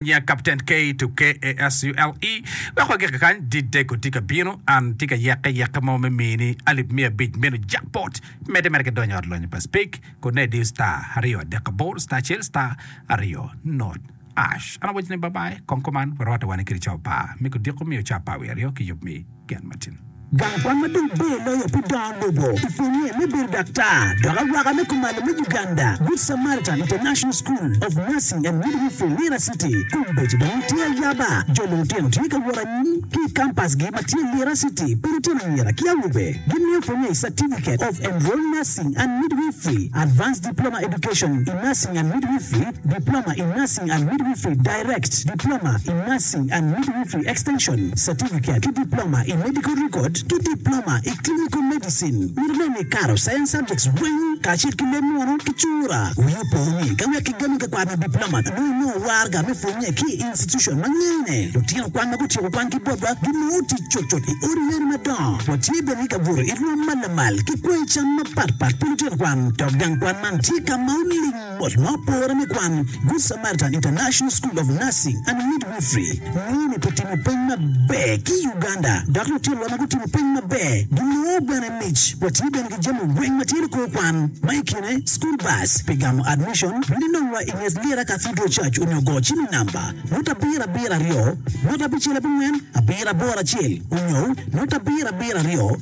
Nya Kapten Kay to KASULE wek wagik kany Dideko tye ka bino An tye ka yeke yeke mo me mini alip miya abic meno jackpot Medde mere ki donyo ot lonyo pa speak kone diyo star aryo adek aboro star acel star aryo not ash An awaconi bye bye kong kuman warwate wane kede cawa par me kodiko miyo cawa par wiye aryo ki yub mi Gang kwan ma dong ber loyo pi dongo lobo i pwonnye me bedo daktar dok awaka me kumalo me Uganda, Good Samaritan International School of Nursing and Midwifery, Lira City. Kombeddi dong tye ayaba, jo lulutino tye ka wot anyim ki i kampasgi ma tye Lira City pi lutino anyira ki awobe. Gimiyo pwonnye i Certificate of Enrolled Nursing and Midwifery, Advanced Diploma Education in Nursing and Midwifery, Diploma in Nursing and Midwifery, Direct, Diploma in Nursing and Midwifery Extension, Certificate, ki Diploma i Medical Record ki Diploma i Clinical Medicine. Mito nen ni ikato Science Subjects weng kacel ki leb munu ki cura. Wi opo ni ka wek kigami ka kwaro me Diploma nongo inongo warga me pwonye ki i institution ma ngene lutino kwan ma gutyeko kwan ki botwa ginongo tic cutcut i odi yeni madongo. Watye bene ka buto i rwom ma lamal ki kwanyi cam mapatpat pi lutino kwan dok gang kwan man tye ka ma oling Bot ma opore me kwan, Good Samaritan International School of Nursing and Midwifery nongo ni pe timo peny maber ki i Uganda, dok lutinwa ma gutimo peny maber ginongo bene mic. Watye bene ki jami weng ma tye ni kor kwan, ma i kine school bus pi gamo admission, bed inongwa i nget Lira Cathedral Church onyo go cim i namba nota abiro abiro aryo nota abicel abongwen abiro aboro acel onyo nota abiro abiro aryo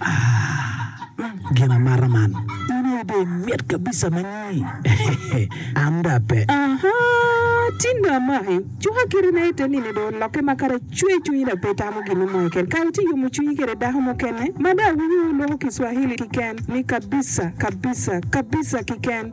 Ah, gin amata man. In aye dong imit kabisa ma nyi. An dong ape. Aha, tin dong amaki. Cuka kite na ite nino dong olokke ma kara cwer cwinyi dong pe itamo gin mo keken. Kara itye yomo cwinyi kede dako mukene ma dong awinyo wulwoko Kiswahili kiken ni kabisa, kabisa, kabisa kiken.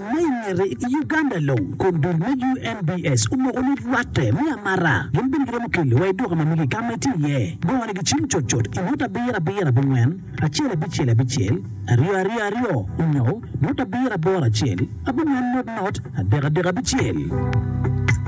Ma i ngete, i Uganda long, kom dul me UNBS omoko ni rwatte me amata gin bene giromo keli wa i duka ma mege ka ma itye iye. Bongo ni gicim cut cut i ngut abiro abiro abingwen, acel abicel abicel, aryo aryo aryo, onyo ngut abiro aboro acel, abingwen not not, adek adek abicel.